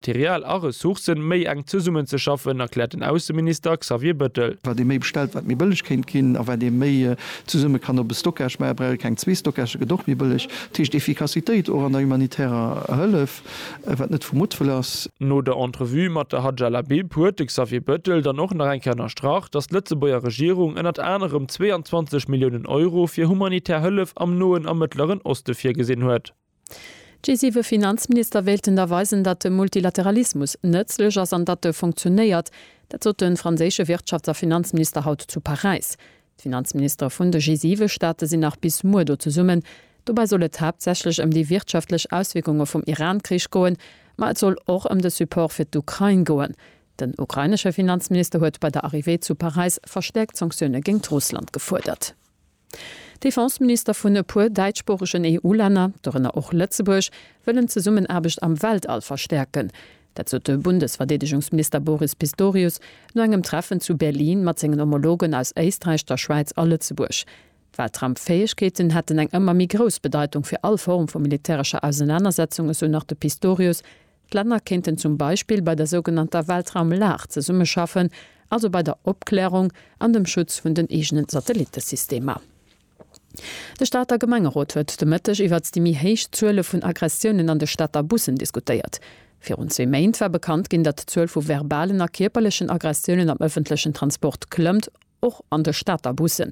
D'Céréales a Ressourcen méi enk zesummenzeschaffen, erkläert den Ausseminister Xavier Bettel. Wat ee méi bestellt, wat méi bëlleg kéint ginn. A wat ee méi zesumme kann op e Stockage maachen, brauch ee keng zwee Stockagë, gëtt och méi bëlleg. Dat heescht Efficacitéit och an der humanitärer Hëllef, wat net vu Muttwëll ass. No der Entrevue mat der Hadja Labib huet de Xavier Bettel dann och nach eng Kéier ënnerstrach, datt d'Lëtzebuerger Regierung ënnert anerem 22 Milliounen Euro fir humanitär Hëllef am Noen a Mëttleren Oste virgesinn huet. G7 Finanzminister wéilten da weisen, datt de Multilateralismus nëtzlech ass an datt e funktionéiert. Dat sot de franséische Wirtschafts a Finanzminister haut zu Paräis. D'Finanzministere vun de G7 Staate sinn nach bis muer do zesummen. Dobäi soll et haaptsächlech ëm déi wirtschaftlech Auswierkunge vum Iran-Krich goen, ma et soll och ëm de Support fir d'Ukrain goen. Den ukrainesche Finanzminister huet bei der Arrivée zu Paräis verstäerkt Sanktioune géingt Russland gefuerdert. Defenseminister vun e puer däitschsproochegen EU-Länner, dorënner och Lëtzebuerg, wëllen d'Zesummenaarbecht am Weltall verstäerken. Dat sot de Bundesverdeedegungsminister Boris Pistorius no engem Treffen zu Berlin mat sengen Homologen aus Éisträich, der Schwäiz a Lëtzebuerg. Weltraumfäegkeeten hätten eng ëmmer méi grouss Bedeitung fir all Form vu militärescher Ausenanersetzung, esou nach de Pistorius, D'Länner kéinten zum Beispill bei der sougenannter Weltraumlag zesummeschaffen, also bei der Opklärung an dem Schutz vun den eegene Satellittesystemer. De Stater Gemengerot huet de Mëtteg iwwert déi méi héich Zuele vun Aggressiounen an de Stater Bussen diskutéiert. Virun zwee Méint war bekannt ginn, datt d'Zuel vu verbalen a kierperlechen Aggressiounen am ëffentlechen Transport klëmmt. och an de Stater Bussen.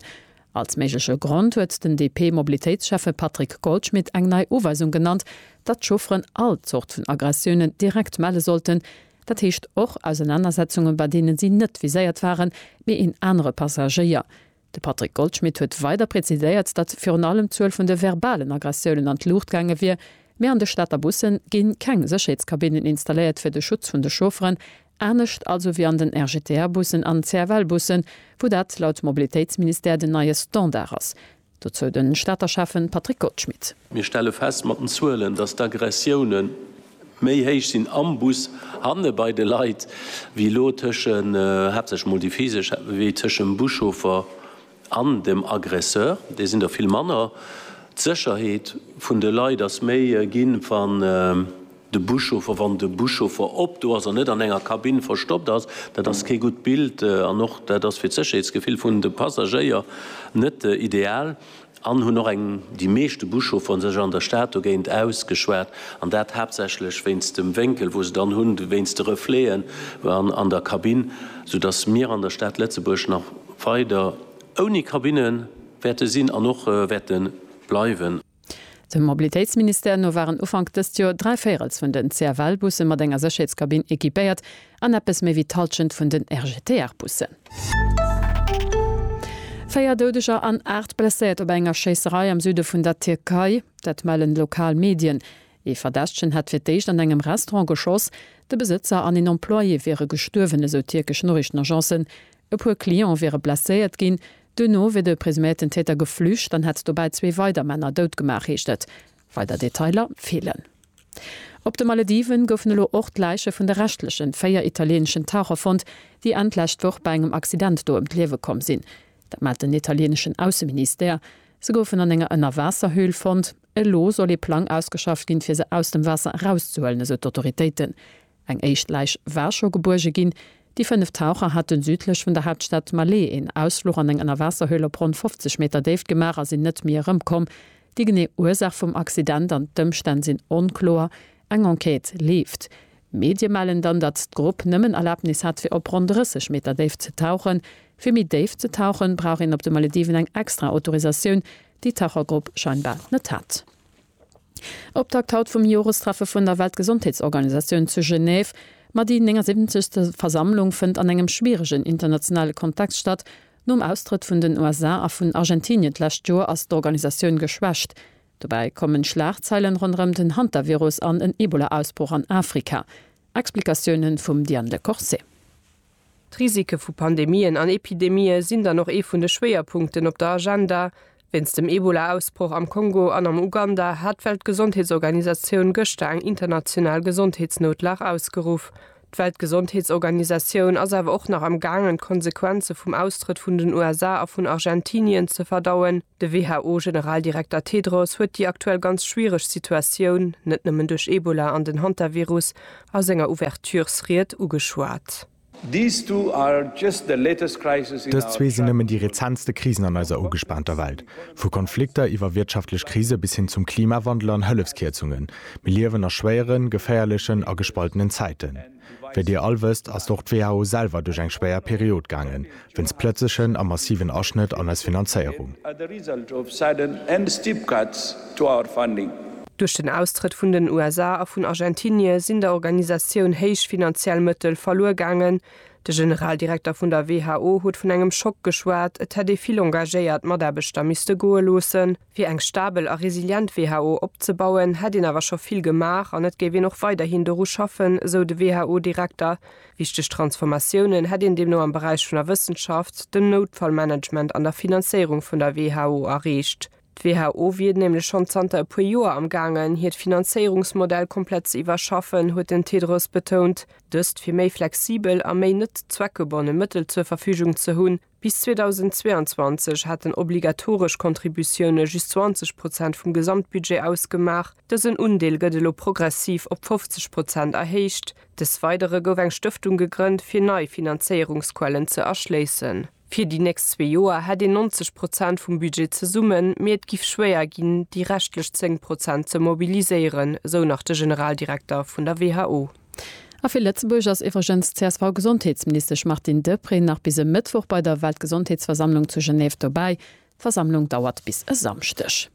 Als méigleche Grond huet den DP-Mobilitéitsschäffe Patrick Goldschmidt eng nei Uweisung genannt, datt d'Chaufferen all Zort vun Aggressiounen direkt melle sollten, dat heescht och Ausenanersetzungen, bei deene si net viséiert waren, mee een anere Passagéier. De Patrick Goldschmidt huet weider präziséiert, datt virun allem d'Zuel vun de verbalen Aggressiounen an d'Luucht gaange wier, mee an de Stater Busse gi keng Sécherheetskabinnen installéiert fir de Schutz vun de Chaufferen, Anescht also wéi an den RGTR-Bussen an CFL-Bussen, wou dat laut Mobilitéitsministère den neie Standard ass. Dozou de Stater Schäffe Patrick Goldschmidt. Mir stelle fest mat den Zuelen, datt d'Aggressioune méi héich sinn am Bus, hanne bei de Leit, wéi elo tëschen, haaptsächlech mol déi physesch, wéi tëschem Buschauffer An dem Aggresseur, déi sinn der vill manner. D'Sécherheet vun de Leit ass méi ginn, wann de Buschauffer, wann de Buschauffer op do ass an net an enger Kabinn verstoppt ass. Dat ass kee gutt Bild an och dat ass fir d'Sécherheetsgefill vun de Passagéier net ideal. An hunn och eng, déi meeschte Buschauffer sech an der Stad dogéint ausgeschwat an dat haaptsächlech wéinst dem Wénkel, wou se dann hunn, wéinst de Refleten an der Kabinn, soudass mir an der Stad Lëtzebuerg nach, weider ouni Kabinne wäerte sinn an och wäerte bleiwen. Dem Mobilitéitsministère no waren Ufank dëst Joer dräi Véirels vun den CFL-Busse mat enger Sécherheetskabinn equipéiert an eppes méi wéi d'Hallschent vun den RGTR-Bussen. Véier Doudeger an aacht Blesséiert op enger Schéisserei am Süde vun der Tierkei, dat mellen lokal Medien. Ee Verdächtegen hätt fir d'éischt an engem Restaurant geschoss, de Besëtzer an een Employé wiere gestuerwen, esou tierkesch Noriichtenagencen. E puer Cliente wiere blesséiert ginn. Duerno wier de presuméierten Täter geflücht an hätt dobäi zwee weider Männer dout gemaach, heescht et. Weider Detailer feelen. Op de Malediven goufen elo och d'Läiche vun de reschtlechen véier italieeneschen Taucher fonnt, déi Enn d'lescht Woch bei engem Accident do ëm d'Liewe komm sinn. Dat mellt den italieneschen Ausseministère. Se goufen an enger Ënnerwaasserhöhl fonnt. Elo soll ee Plang ausgeschafft ginn, fir se aus dem Waasser erauszehuelen, esou d'Autoritéiten. Eng éischt Läich war scho gebuerge ginn. Déi fënnef Taucher haten südlech vun der Haaptstad Malé een Ausfluch an eng Ënnerwaasserhöhl op ronn 50 Meter Déift gemaach a sinn net méi erëmkomm. Déi genee Ursaach vum Accident an d'Ëmstänn sinn onkloer. Eng Enquête leeft. Medie mellen dann, datt d'Grupp nëmmen Erlabnis hat fir op ronn 30 Meter Déift ze tauchen. Fir méi déif ze tauchen, brauch een op de Malediven eng extra Autorisatioun, déi d'Tauchergrupp scheinbar net hat. Optakt haut vum Jorestreffe vun der Weltgesondheetsorganisatioun zu Genève. Ma déi 79. Versammlung fënnt an engem schwieregen internationale Kontext statt. Nom Austrëtt vun den USA a vun Argentinien d'lescht Joer ass d'Organisatioun geschwächt. Dobäi kommen Schlagzeilen ronderëm den Hantavirus an en Ebola-Ausbroch an Afrika. Explikatiounen vum Diane Lecorse. D'Risike vu Pandemien an Epidemië sinn dann och ee vun de Schwéierpunkten op der Agenda. Wéinst dem Ebola-Ausbroch am Kongo an am Uganda hat d'Weltgesondheetsorganisatioun gëschter eng international Gesondheetsnoutlag ausgeruff. D'Weltgesondheetsorganisatioun ass awer och nach am gaangen d'Konsequenze vum Austrëtt vun den USA a vun Argentinien ze verdauen. De WHO-Generaldirekter Tedros huet déi aktuell ganz schwiereg Situatioun, net nëmmen duerch Ebola an den Hantavirus, a senger Ouverturesried ugeschwat. Dës zwee sinn nëmmen déi rezentste Krisen an eiser ugespaanter Welt. Vu Konflikter iwwer wirtschaftlech Krise bis hin zum Klimawandel an Hëllefskierzungen, mir liewen a schwéieren, geféierlechen a gespaltenen Zäiten. Wéi Dir all wësst, ass och d'WHO selwer duerch eng schwéier Period gaangen, wéinst plëtzlechen a massiven Aschnëtt an eis Finanzéierung. Duerch den Austrëtt vun den USA a vun Argentinie sinn der Organisatioun héich finanziell Mëttel verluer gaangen. De Generaldirekter vun der WHO huet vun engem Schock geschwat, et hätt ee vill engagéiert Mataarbechter misste goe loossen. Fir eng stabel a resilient WHO opzebauen, hätt een awer scho vill gemaach an et géif een och weiderhin doru schaffen, esou de WHO-Direkter, Wichteg Transformatiounen hätt een deemno am Beräich vun der Wëssenschaft, dem Noutfallmanagement an der Finanzéierung vun der WHO erreecht. D'WHO wier nämlech schonn zanter e puer Joer am Gaangen, hiert Finanzéierungsmodell komplett ze iwwerschaffen, huet den Tedros betount. Dëst, fir méi flexibel a méi net zweckgebonne Mëttel zur Verfügung ze hunn. Bis 2022 hätten obligatoresch Contributioune just 20 Prozent vum Gesamtbudget ausgemaach. Dësen Undeel gëtt elo progressiv op 50 Prozent erhéicht. Des Weidere gouf eng Stëftung gegrënnt, fir nei Finanzéierungsquellen ze erschléissen. Fir déi nächst zwee Joer hätt een 90 Prozent vum Budget zesummen, mee et giff schwéier ginn, déi reschtlech 10 Prozent ze mobiliséieren, esou nach de Generaldirekter vun der who. A fir Lëtzebuerg ass iwwregens d'CSV-Gesondheetsministesch Martine Deprez nach bis e Mëttwoch bei der Weltgesondheetsversammlung zu Genève dobäi. D'Versammlung dauert bis e Samschdeg.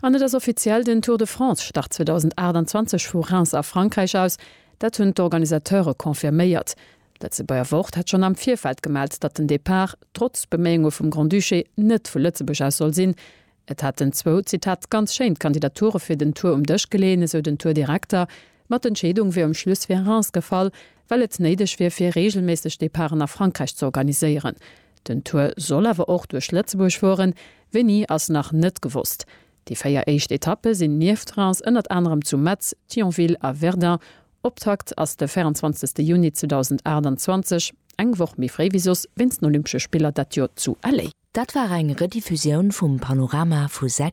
An et ass offiziell, den Tour de France start 2028 vu Reims a Frankräich aus. Dat hunn d'Organisateure confirméiert. D'Lëtzebuerger Wort hat schonn am Virfeld gemellt, datt den Depart, trotz Beméiunge vum Grand-Duché, net vu Lëtzebuerg aus soll sinn. Et hätten zwou, Zitat, ganz schéin d'Kandidature fir den Tour um Dësch geleeën, esou den Tour-Direkter, ma d'Entscheedung wier um Schluss fir Reims gefall, well et néideg wier fir reegelméisseg Departen a Frankräich ze organiséieren. Den Tour soll awer och duerch Lëtzebuerg fueren, wéini ass nach net gewosst. Déi véier éischt Etappe sinn nieft Reims ënnert anerem zu Metz, Thionville a Verdun Optakt ass de 24 Juni 2028, eng Woch méi fréi wéi soss, wéinst den Olympesche Spiller dat Joer zu LA. Dat war eng Rediffusioun vum Panorama vu 6.